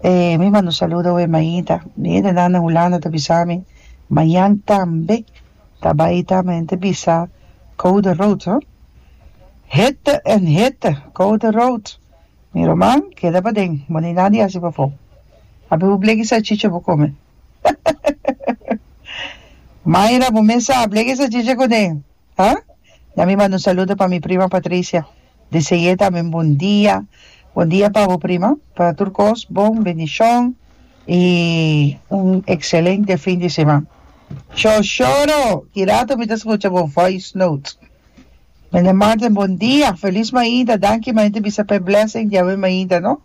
Eh, mi manda un saludo aweh Maida, Maida nan den Hulanda ta bisa mi, mañan tambe ta bai ta mi ta bisa Code Rood hoor, hitte en hitte, Code Rood, mi ruman keda paden, bo ni nada di hasi pafo, ape bo bleki salchicha bo come, Mayra bo mes sa bleki salchicha cuden, ah, ya mi manda un saludo pa mi prima Patricia. Di seguia tambe bon dia. Bon dia pa bo prima pa tur cos bon bendicion y un excelente fin di seman cho choro ki rato mi ta scucha bo voice note Meneer Martin bon dia feliz mainta danki mainta bisa pe blessing di awe mainta no.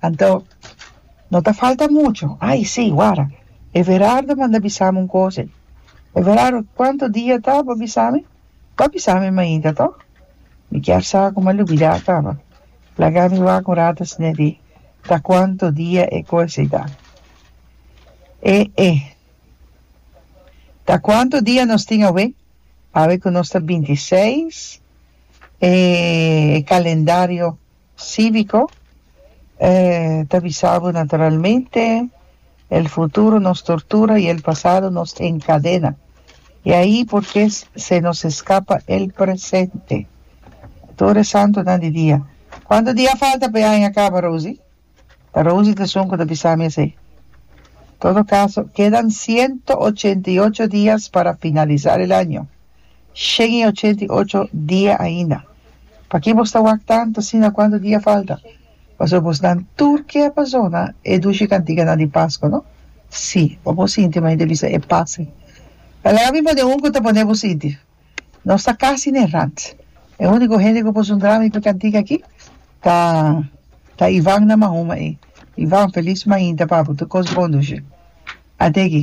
Anto, no ta falta mucho. Ay, sí, wara. Everardo manda bisami un cose. Everardo, cuanto dia ta bo bisami? Bo a bisami mainta, toh? Mi kier sa cu mi a lubida caba. Laga mi waca un rato scne di ta cuanto dia e cose ta. E, e. Ta cuanto dia nos tin awe? Awe cu nos ta binti seis, e calendario Cívico, e ta bisa bo naturalmente, el futuro nos tortura y el pasado nos encadena. Y ahi por qué se nos escapa el presente. Tur e santonan di dia. Cuanto dia falta pa e aña caba, Rosy? Ta Rosie Tesun cu ta bisa mi esey. Todo caso, kedan ciento ochenta y ocho dias para finalisar el año. Shen y ochenta y ocho dia ainda. Paki bos ta wak tanto asina? Cuanto dia falta? Pasobra bos nan tur ke pa zona e dushi cantiganan di Pascua, no? Sí, pa bo sinti, m'a hende bisa e pase. Laga mi pone un cu ta pone bo sinti. Nos ta casi n'e rat. E unico hende cu puso un drama ipe cantica aki ta ta Ivan na Mahoma ey. Ivan, feliz mainta papu. Tur cos bon dushe. Ate aki.